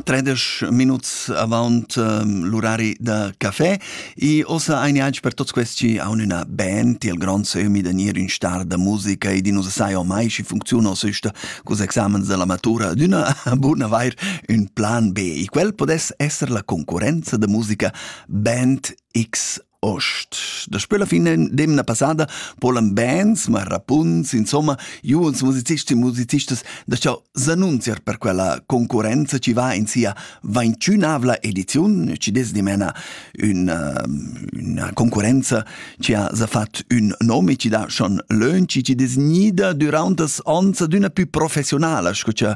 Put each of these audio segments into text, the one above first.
Tredesch minuts avant um, l'urari da café e ossa ein ianc per tots questi aun üna band, il grond se umi da nier ün star da musica e di nus sai ormai schi funcziuna süsta cus examens della matura d'una buna vair ün plan B e quel podes esser la concurenza da musica Band X Ost. Daspö la fin d'emna passada polan bands, marrapunts, insomma, juons musicists e musicistas da cha s'annunziar per quella concurrenza chi va in sia ventünavla ediziun, chi dess dimena üna, üna concurrenza chi ha s'ha fat ün nom e chi dà schon lönch e chi dess gnida düraunt as ons adüna pü professionala sco cha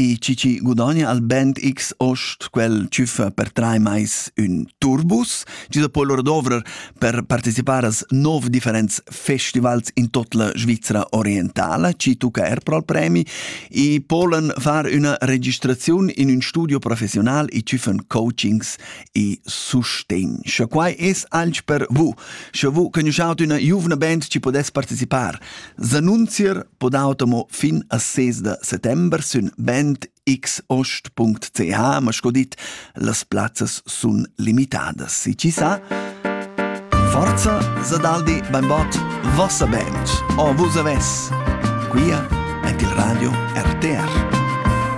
E chi chi gudogna al Band X Ost quel tschüffa per trai mais ün turbus, chi da po lura dovrer per participar as nov differents festivals in tot la Svizzera orientala, chi tucca er pro al premi, e polen far üna registraziun in ün studio professional e tschüffen coachings e sustegn. Scha quai es alch per vous, scha vous conosciaut üna giuvna band chi podess participar S'annunzier pod automo fin a 6 da settember sün bandx.ch, ma sco dit, las plazzas sun limitadas. Si chi sa, forza Sadaldi beinbot vossa band, o vus aves, quia ant il radio RTR.